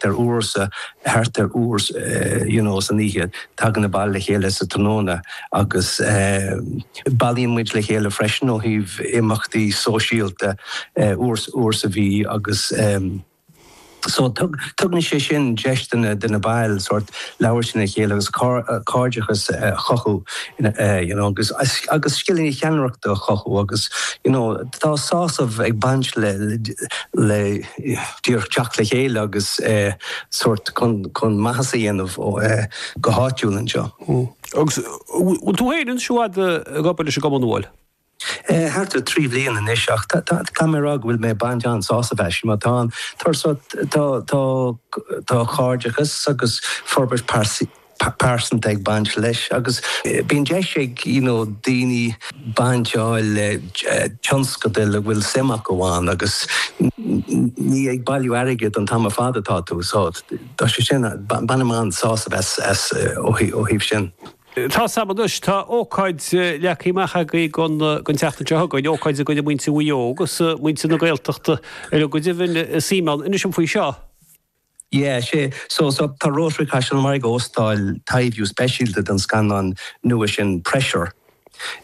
ar uair sa, thart ar uair you know san oíche, tagann na baill le chéile sa tráthnóna agus eh bailíonn muid le chéile freisin ó thaobh imeachtaí sóisialta eh uair, uair sa mhí agus em so tug, tugann sé sin deis do na, do na baill sórt labhairt lena chéile agus cair, cairdeachas a chothú ina eh you know agus, agus scileanna ceannaireachta a chothú agus you know tá sásamh ag baint le, le, le. díreach teacht le chéile agus sórt chun maitheas a dhéanamh go háitiúil anseo. Agus bhfuil tú féin anseo ag obair leis an gcumann bhuel? Thart ar thrí bhliain anois ach caithfidh mé a rá go bhfuil mé ag baint an-sásamh as mar tá an, tá cairdeachas agus forbairt pearsanta ag baint leis agus bíonn deis ag you know daoine baint a fháil le tionscadail a bhfuil suim acu ann agus ní ag bailiú airgid an t-am ar fad atá tú so tá sé sin bainim an-sásamh as as ó thaobh sin. Tá's am anois, tá ócáid leagtha amach agaibh don tseachtain seo chugainn, ócáid go gcuirfidh muintir Mhaigh Eo agus muintir na Gaeltachta ar ndóigh go deimhin suim ann. Inis dom faoi seo. Yeah, sea, so, so, tá Rotary Caisleán an Bharraigh ag óstáil taibhiú speisialta den scannán nua sin Pressure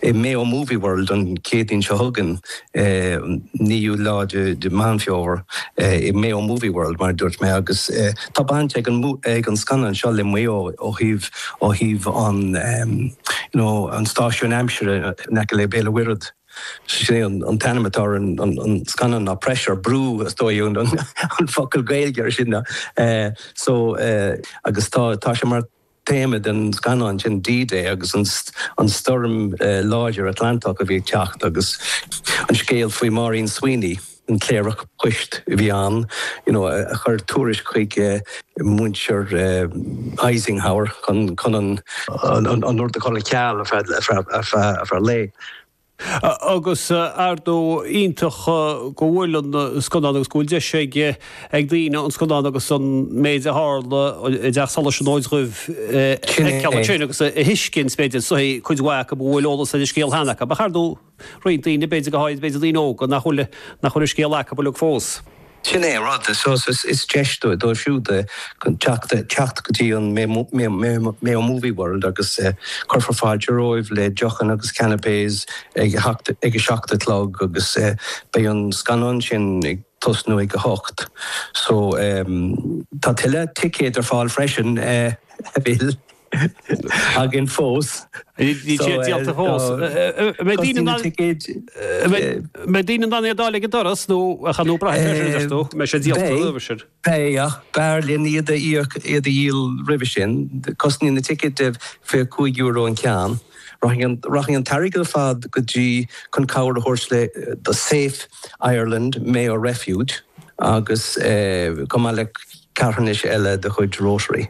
i Mayo Movie World an Chéadaoin seo chugainn, an 9ú lá de Mheán Fómhair, i Mayo Movie World, mar a dúirt mé, agus tá baint ag an, ag an scannán seo le Maigh Eo ó thaobh, ó thaobh an, you know, an stáisiún aimsire in aice le Béal an Mhuirthead. Sin é an t-ainm atá ar an scannán ná Pressure, Brú is dóigh an focal Gaeilge ar sin. So, agus tá tá sé mar théama den scannán sin D-Day agus an an stoirm láidir Atlantach a bhí ag teacht agus an scéal faoi Máirín Sweeney, an cléireach poist a bhí ann you know a chuir tuairisc chuig muintir Eisenhower chun an. rud a chur ar ceal ar feadh lae. Agus ar ndóigh iontach go bhfuil an scannán agus go bhfuil deis ag daoine an scannán agus an méid a tharla i dTeach Solais an Fhóid Dhuibh a fheiceáil ansin agus a thuiscint b'fhéidir cuid mhaith acu a bhfuil eolas ar an scéal cheana acu. Ach ar ndóigh. roinnt daoine, b'fhéidir, go háirid, b'fhéidir, daoine óga nach bhfuil, nach bhfuil an scéal acu uilig fós. Sin é an rud, is, is, is deis dóibh, dóibh siúd eh, teacht, teacht go dtí an Mayo, Mayo, Mayo, Mayo Movie World agus eh, cuirfear fáilte romhaibh le deochanna agus canapés ag a seacht, ag a seacht a chlog agus eh, beidh an scannán sin ag tosnú ag a hocht. So, em, tá tuilleadh ticéad ar fáil freisin eh, a Mhichíl. againn fós. Níl sé déanta fós. Beidh daoine na ticéid. Beidh daoine in ann iad a fháil ag an doras nó a chan nó braith ar tú mé sé díolta. Pé ach b'fhearr linn iad a íoc iad a dhíol roimhe sin. Cosnaíonn na ticéid de fiche cúig euro an ceann. Rachaidh an t-airgead ar fad go dtí chun cabhair a thabhairt le The Safe Ireland Mayo Refuge agus chomh maith le carthanais eile de chuid Rotary.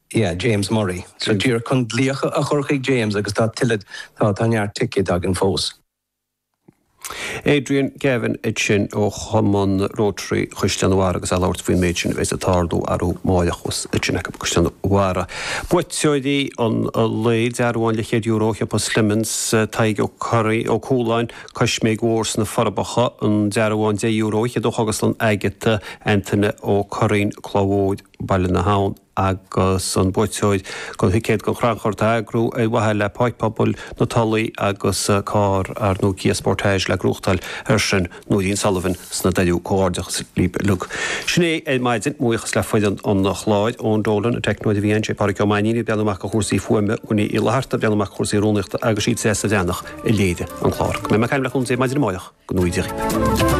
Yeah, James Murray. So díreach chun glaoch a chur chuig James agus tá tuilleadh, tá, tá neart ticéid againn fós. Adrian Gavin ansin ó Chumann Rotary Chaisleán an Bharraigh agus é ag labhairt faoin méid sin a bheidh ag tarlú arú amárach thuas ansin i gCaisleán an Bharraigh. Buaiteoirí an lae, dearbhán leathchéad euro ó Shiopa Slemons, Tadhg Ó Curraí, Ó Cualáin, Coisméig Mhór sna Forbacha, an dearbhán deich euro fhichead ó Chógaslann Agatha, Antaine Ó Curraoin, Cloch Mhór, Baile na hAbhann. agus an buaiteoir den thicéad don chrannchur atá á eagrú ar mhaithe le Páirc Pobail na Tulaí agus carr nua Kia Sportage le gnóthachtáil air sin, Nóirín Sullivan sna Doiriú. Comhghairdeachas libh uilig. Sin é ar maidin. Mo bhuíochas le foireann an chláir, Eoin Dolan, an teicneoir a bhí ansin, Pádraig Ó Mainnín ag breathnú amach ar chúrsaí fuaime, Winnie Uí Fhlatharta ag breathnú amach ar chúrsaí rúnaíochta agus is í Treasa Bhreathnach a léirigh an clár. Beidh mé ag caint libh le cúnamh Dé maidin amárach. Go nuige.